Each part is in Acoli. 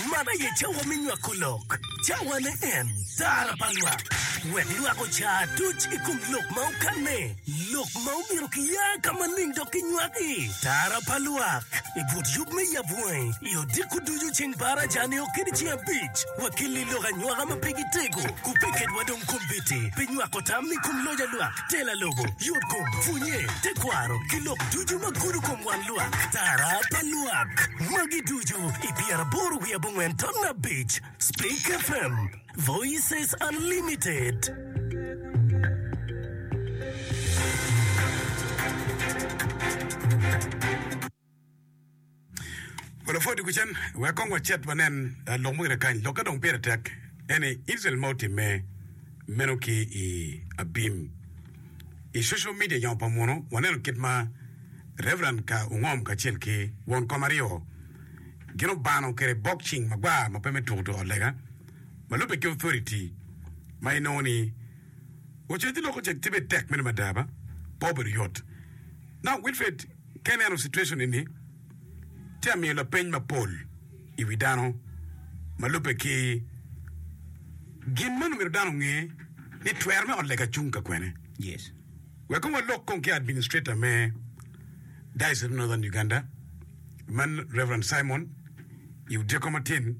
Man aye cawa me nywako lok, cawane en tara pa lwak. Wek lwak oca tuc i kom lok ma okanne, lok ma omyero kiya ka maling dok kinywaki. Tara pa lwak, i but yub me yab wangi, i odiko ducu ceng par aca nio kadi ceng abic. Wakilli lok anywaka ma pe gitego, ku pe ketwa dong kombeddi pi nywako tam i kom loc a lwak. Tela lobo, yotkom, pwonye, tekwaro, ki lok ducu ma gudo kom wang lwak, tara pa lwak. Magi ducu i pyeraboro wiye abongwen ton abic. Speak FM, Voices Unlimited. Wa lapwod dye kucen, wek kong wacit wanen lok mo gire kany, lok ka dong pire tek en ni Icrael ma otimme meno ki i abim. I social media nyo pa muno, waneno kit ma Reverend ka ungom kacel ki won kom aryo gin obano kede bokcing magwar ma pe me tuko tuko lega ma lube ki authority ma inongo ni ocet ci loko cek tye bene tek meno mada ba pe obedo yot. Now Wilfred, Ka ineno citwecon eni, tye ka miyo lapeny mapol i wi dano ma lubbe ki gin man. Omyero dano onge ni twero me ot lega cung ka kwene. Wek kong walok kong ki Administrator me Diocese me Northern Uganda, man Rev. Simon i odyekko matin.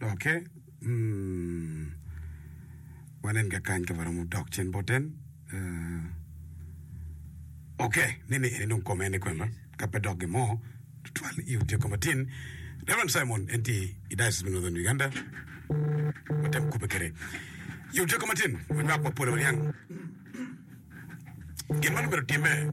Ok mm wanen kakany ka waromo dok cen boten. Uh, ok ni ni eni dong kome ni kwena ka pe dok gimo twal i utye koma tin Reverend Simon en tye i Diocese me Northern Uganda watem kube kede i utye koma tin wanywak wapola waniang gin ma nongo otimme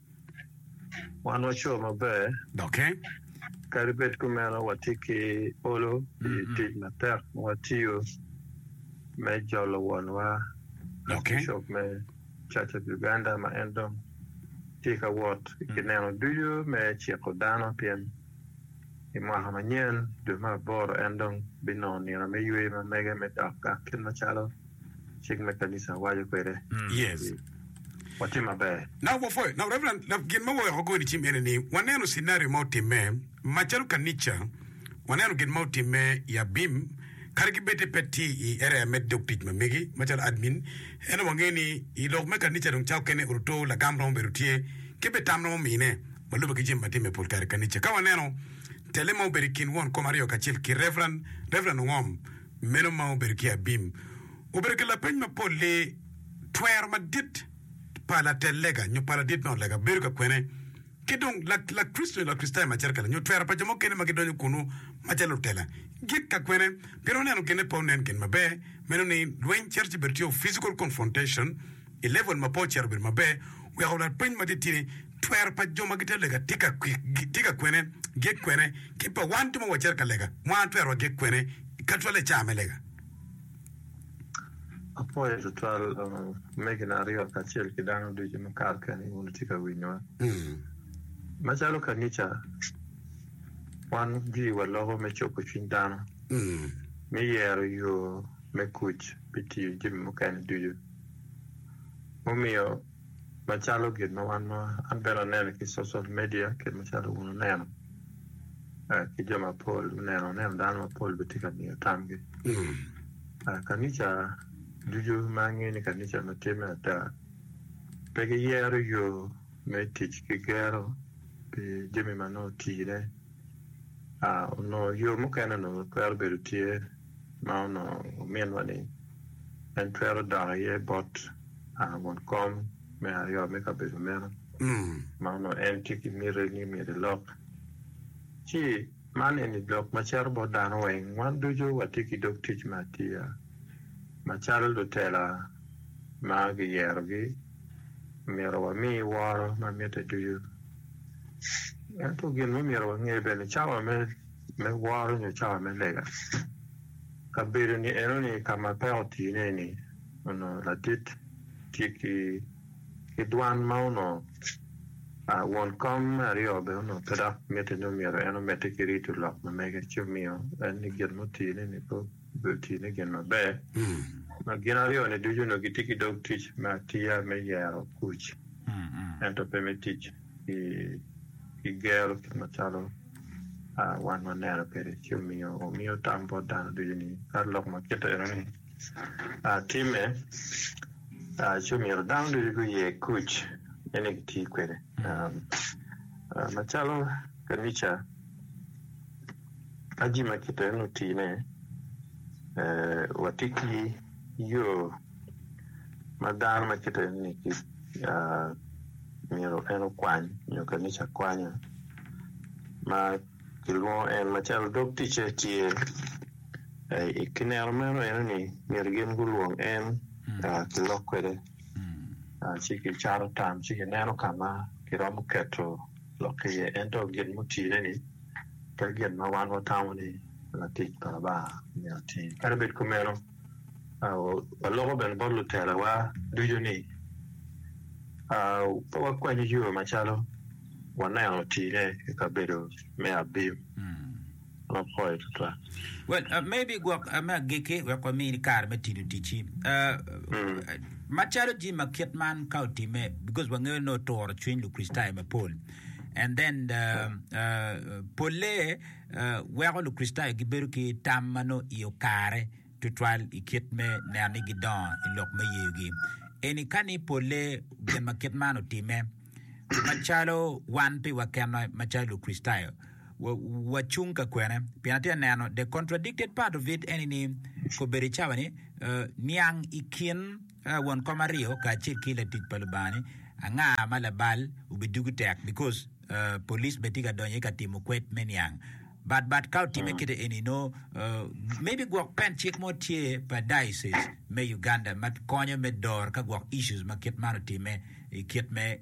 Wan wa co maber. Doki. Kadi bed kumeno, watye ki olo pi tic matek ma watiyo me jolo wonwa, Archbishop me Church of Uganda, ma en dong tye ka wot i gineno ducu me ciko dano pien i mwaka manyen, dwe me aboro, en dong binongo nino me yweyo ma mege me dok gang kit macalo. cik me kanica waco kwede ni watye maber. Gin ma waweko kore cim ene ni waneno cinario ma otimme macalo kanica, waneno gin ma otimme i abim kadi ki bed ni pe tye i area me dog tic ma megi macalo admin. Ento wangeyo ni i lok me kanica dong cawa kene oruto lagam romo bedo tye ki bene tam romo mine ma lube ki jami ma timme pol kare i kanica. Ka waneno tele ma obedo i kin won kom aryo kacel ki Rev. Ongom, Meno ma obedo ki abim obedo ki lapeny mapol ni, Twero madit pa latel lega nyo pa ladit me ot lega bedo ka kwene? Ki dong, Lakricito nyo Lakricitayo macito kela nyo twero pa jo mukene ma gidonyo kunnu macalo lutela gik ka kwene? Pien waneno ginne pe onen gin maber, meno ni lweny cito ci bedo tye o physical confrontation, I level ma pe ocito obedo maber, weko lapeny ma titidi, twero pa jo ma gitye ka lega tye ka kwik, tye ka kwene, gik kwene, ki pa wan jo ma wacito ka lega, wan twero wagik kwene ka twal i caa me lega. Apwoyo tutwal omegina aryo kacel ki dano ducu ma kare keni wun wutye ka winyowa. Macalo kanica, wan giwa loko me cobo cwiny dano, me yero yo me kuc pi tiyo jami mukene ducu. mumiyo macalo gin ma wan ma an bene aneno ki social media kit macalo wun wuneno ki jo mapol wuneno aneno dano mapol bene tye ka miyo tamgi kanica ducu ma angeyo ni kanica ma tye me ada pe giyero yo me tic ki gero pi jami ma nongo otine onongo yo mukene onongo twero bedo tye ma onongo ominwa ni en twero dok iye bot won kom me aryo me kabedo meno ma onongo en tye ki miti ni myero elok. Ci man eni lok ma cito bot dano weng, wan ducu watye ki dog tic me atiya macalo lutela ma giyerogi, myero wami woro ma mitte ducu. Ento gin ma myero wange bene cawa me me woro nyo cawa me lega. Kabedo-ni enoni ka ma pe otine-ni onongo latit tye ki dwan ma onongo won kom me aryo bene onongo pe dok mitte nyo myero en omedde ki rito lok ma mege ci omiyo en ni gin ma otine-ni pe obedo tine gin maber. Ma gin aryo-ni ducu onongo gitye ki dog tic me atiya me yero kuc ento pe me tic. ki gero kit macalo wan waneno kwede ci omiyo omiyo tam bot dano ducu ni ka lok ma kite enoni timme ci omyero dano ducu guye kuc me ni giti kwede macalo kanica ka jami ma kite enoni otine wati ki yo ma dano ma kite ni myero en okwany nyo kanica kwanya ma kilwongo en macalo dog ticce tye i kineno meno eno ni myero gin gulwong en kilok kwede ci kicato tam ci kineno ka ma kiromo keto lok ki iye ento gin mutine ni pe gin ma wan watamo ni latic pa Lubanga myero otim kadi bed kumeno Waloko bene bot lutelowa ducu ni pe wakwany yo macalo waneno tine i kabedo me Abim. Well, uh, maybe gwok uh, me agikki wek wamini kare me tino ticci. Uh, mm. Macalo jim ma kit man ka otime because wangeyo ni oturo cwiny Lukricitayo mapol. And then uh, uh, polle weko Lukricitayo gibedo ki tam ma nongo iye okare tutwal i kit me neno ni gidongo i lok me yeyogi. Eni ka ni polle gin ma kit man otimme, macalo wan pi wakenwa macalo Lukricitayo, wacung ka kwene? Pien atye ka neno the contradicted part of it eni ni kobedo i cawa ni niang i kin won kom aryo kacel ki latic pa Lubanga ni anga ma labal obidugi tek because Police bene tye ka donyo aye ka timo kwed me niang. But but ka otime kite eni no maybe gwok pen cik mo tye pa diocese me Uganda ma konyo me dor ka gwok issues ma kit man otime i kit me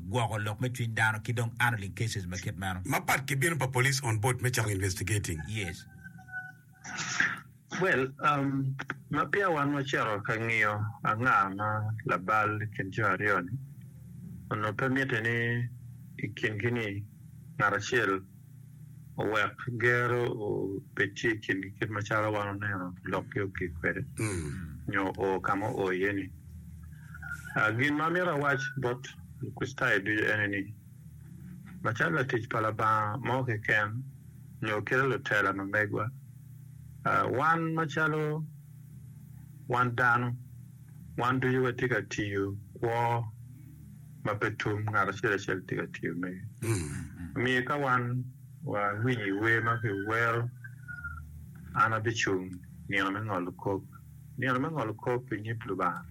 gwoko lok me cwiny dano ki dong handling cases ma kit meno. Mapat ki bino pa Police on board me cako investigating. Yes. Well, ma peya wan wacito ka ngiyo anga ma labal i kin jo aryo-ni, onongo pe mitte ni i kingi-ni ngat acel owek gero obed tye i kingi kit macalo wan oneno lokgi ogik kwede nyo oo ka ma oo iye-ni. Gin ma amito awac bot Lukricitayo ducu ene ni, Macalo latic pa Labanga mo keken nyo kit lutela ma megwa, wan macalo wan dano, wan ducu watye ka tiyo kwo ma pe tum, ngat acel acel tye ka tiyo mege. Omiyo ka wan wawinyo i wer ma kiwero, An abicung nino me ngolo kop, Nino me ngolo kop i nyim Lubanga,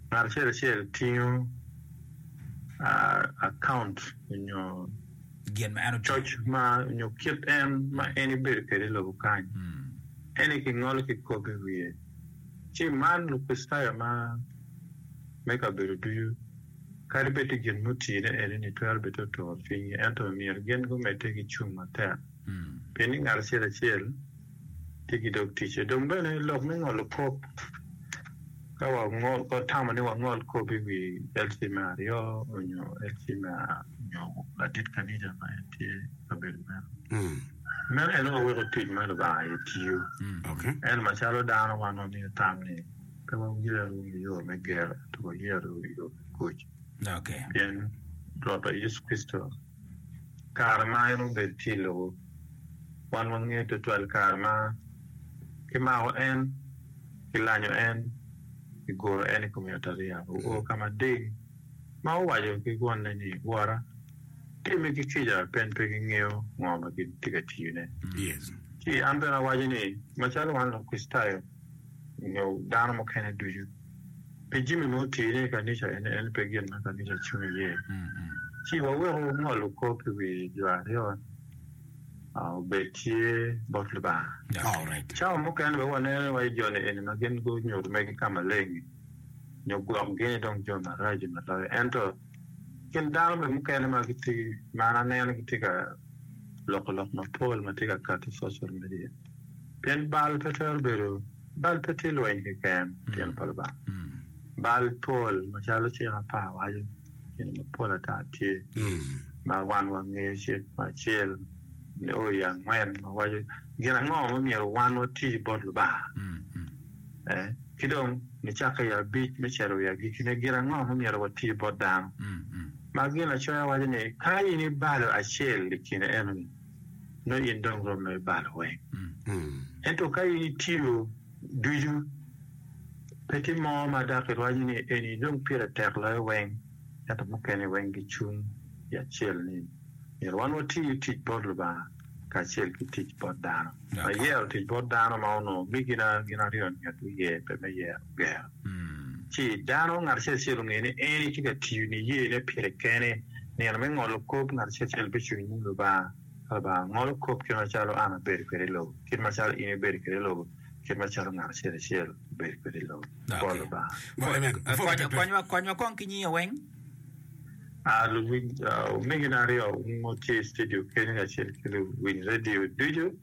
ngat acel acel tingo akaunt nyo coc ma nyo kit en ma en ibedo kwede i lobo kany, eni ki ngolo ki kop i wiye. Ci man Lukricitayo ma me kabedo ducu, kadi bed ti gin mutine eni-ni twero bed te otur cwinygi, ento myero gin gumedde ki cung matek. pien ni ngat acel acel tye ki dog ticce. Dong bene lok me ngolo kop, ka watamo ni wangol kop i wi LC me aryo nyo LC me nyo ladit kaniga ma en tye i kabedo meno, meno en aye weko tic ma Lubanga aye tiyo. Ento macalo dano wan wamiyo tam ni pe wayero yo me gero ento wayero yo me kuc, pien Rwotwa Yecu Kricito, kare ma en obed tye i lobo. Wan wangeyo twatwal kare ma kimako en, kilanyo en, kiguro en i kom yatariya. Oo ka mading ma owaco ki Wonne ni, Wora, timmi ki kica pien pe gingeyo ngo ma gitye ka tiyone. Ci an bene awaco ni, macalo wan Lukricitayo nyo dano mukene ducu, pi jami ma otire i kanica eni en pe gin ma kanica cung iye. Ci wawek wungolu kop i wi jo aryo ni obed tye bot Lubanga. Cawa mukene bene waneno wa i joni eni ma gin gunyuto mere ki ka maleng-ngi nyo gwok gini dong jo maraco ma loyo. Ento kin dano bene mukene ma gitye ma an aneno gitye ka loko lok mapol ma tye ka kati i social media. Pien bal pe twero bedo. Bal pe tye lweny keken i tyen pa Lubanga. Bal pol macalo cik apar waco, gin mapol ata tye ma wan wangeyo. Cik me acel nyo i angwen wawaco gin ango ma myero wan wati bot Lubanga, ki dong nicakke i abic me cito i agikkine gin ango ma myero wati bot dano. Ma ginacoya waco ni ka in ibalo acel i kine enoni, nongo in dong romo i balo weng. Ento ka in itiyo ducu, pe tye mo ma dok irwaco ni eni dong pire tek loyo weng, ento mukene weng gicung i acel ni, Myero wan wati tic bot Lubanga kacel ki tic bot dano. Ayero tic bot dano ma onongo omigi gin aryo-ni ngat wiye pe me yero gero. Ci dano ngat acel acel onge ni en aye tye ka tiyo niyene pire kene. Nino me ngolo kop ngat acel acel bicung inyim Lubanga, ka Lubanga ngolo kop kit macalo an abedo kwede i lobo, kit macalo in ibedo kwede i lobo, kit macalo ngat acel acel obedo kwede i lobo. Bot Lubanga. Konywa kong ki nyinge weng. Luwiny omegina aryo wungo tye i studio kenyo kacel ki luwiny radio ducu.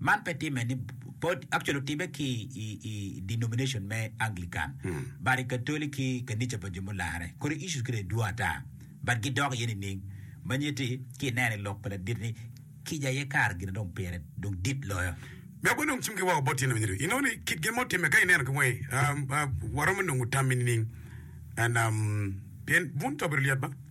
Man pe timme ni bot, actually otimme ki i denomination me Anglican, but i Katoli ki kanica pa jo mularre kore issues kine dwong ata, but gidok iye nining? Manyiti ki ineno i lok pa ladit ni kica aye kare gin dong pire dong dit loyo. Me agwe nongo cimgi woko bot tyene manyito inongo ni kit gin mo timme ka ineno ki wangi, waromo nongo tammi nining? and pien bun cobi ri lyet ba.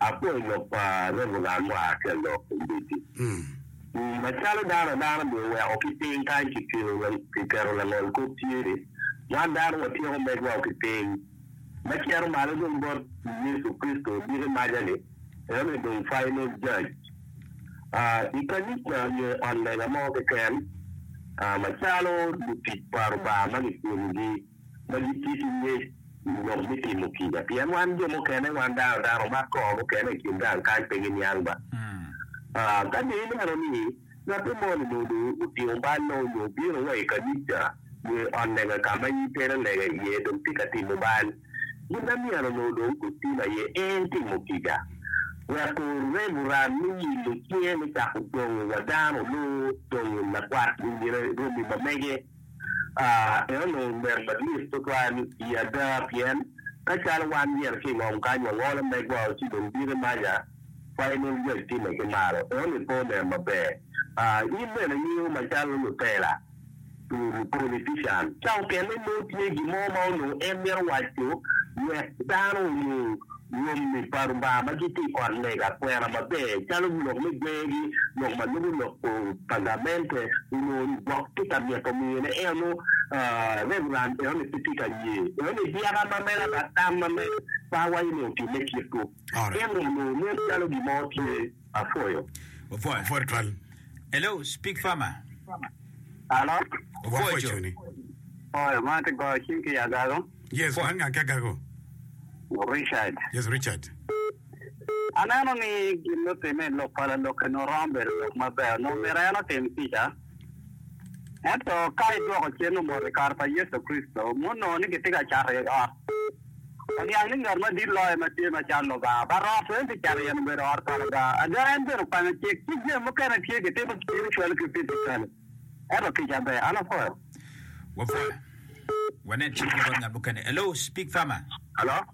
Apwoyo lok pa Reverend mo aa ki alok Ombedi. Macalo dano adano dong oweko ki piny kany kiketo langol kop tye, wan dano watyeko meg wao ki piny ma cito malo dong bot Yecu Kricito odiko maca-ni, enoni dong final judge. I kanica nyo i ot lega mo keken macalo lutic pa Rubanga ma kicwelogi, ma gitye ki ngec i ngom me timo kica. Pien wan jo mukene, wan dano dano omak kor mukene i kin gang kany pe giniang ba. Ka dong ineno ni ngatte moni onongo dong otingo ballo nyo obino wa i kanica nyo i ot lega ka ma in tere lega iye dong tye ka timo bal, gin ma myero onongo dong otim aye en timo kica wek orem oram me yillo cinge me cako dongo wa dano nyo dongo lakwat i nge romi ma mege. Eno ber madit tutwal i ada pien ka calo wan myero ki i ngom kany wangolo megwa ci dong bino imanya wa inong jwac time ki malo. Eno ni pe onen maber. In bene ingiyo macalo lutela, politician ca okene nongo tye gin mo ma onongo en mito waco wek dano onyo. Rwommi pa Lubanga ma gitye i ot lega kwena maber, calo lok me gweyogi, lok ma lubo lok Pergamente, onongo Lubok tye ka mito miyone enonu, Reverend enoni pe tye ka ye enoni, dyaka ma mena kata tam ma mena, Pawa enoni otimme kitwu. Ento onongo nen calo gin mo tye. Apwoyo. Opwoyo. Pwod twal. Hello speak farmer. Alo. Opwoyo cuni. Opwoyo ma ati goyo cing ki agago. Yes man ngang ki agago. Richard. Yes Richard. Aneno ni gin mutime i lok pa lalok eni oromo bedo lok maber nongo myero en otim kica. Ento ka idwoko cen omot i kare pa Yecu Kricito, ma onongo ni kitye ka cato iye ot, oniang ni ngat madit loyo ma tye macalo Lubanga. But ot weng pi cato iye-ni obedo ot pa Lubanga. Ada, en bene okwanyo cik, ci jami mukene tye kitimo spiritually ki physically. Ento kica ber. An apwoyo. Wapwoyo. Wanen cik mogo ngat mukene. Hello, Speak Farmer. Hello.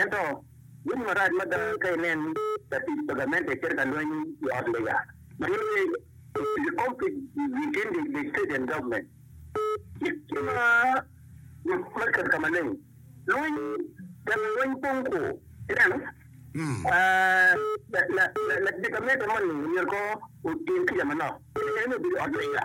Ento, winyo marac mada ka inen latic pa gamente cito ka lweny i ot lega ma nyinge Ocean Conflict within the state and government. Cik tye ma yot me keto ka maleng lweny, temo lweny pong kwo. Ineno? La, la, la, latic pa gamente moni myero ko otim kica manok, kadi bed ni obedo i ot lega.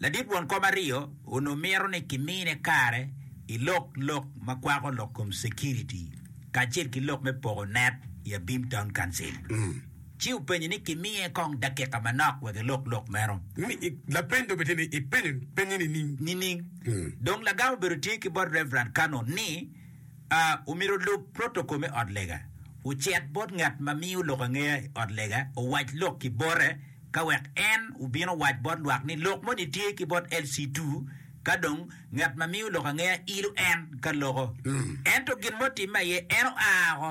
Ladit won kom aryo onongo mito ni kimine kare i lok lok ma kwako lok kom security kacel ki lok me poko net i Abim Town Council, ci openyo ni kimiye kong dakika manok wek elok lok meno. Lapeny dong obitye ni, Ipenyo penye nining? Nining? Dong lagam obedo tye ki bot Rev. Cannon ni, Omyero olub protokol me ot lega, ocit bot ngat ma miyo lok angeya i ot lega, owac lok ki bote, ka wek en obin owac bot lwak ni lok moni tye ki bot LC2. Ka dong ngat ma miyo lok angeya ilo en ka loko, ento gin ma otimme aye en oa oko.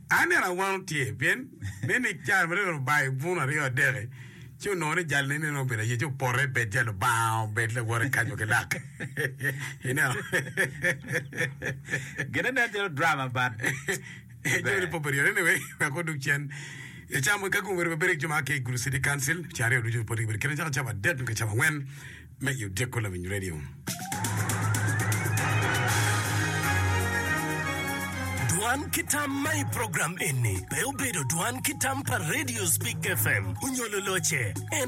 Aneno awano tye, pien nen ni kare ma dong Lubayi bun aryo adek-ki ci onongo ni jal neni dong obedo ayie ci oporre i Betel, Lubanga obed lawote kaco ki lak. Ineno? Gine nen calo drama but Eco ni ber. pope ryo. Anyway, wek odug cen. Ecamo ka gung bedo maber ki jo ma aa ki i Gulu City Council, ceng aryo ducu poti gibedo kite cako cabo adek nyo ka cabo angwen. me i Odiko Lawiny Radio. Dwan ki tam ma i program eni pe obedo dwan ki tam pa Radio Speak FM onyo loloce. En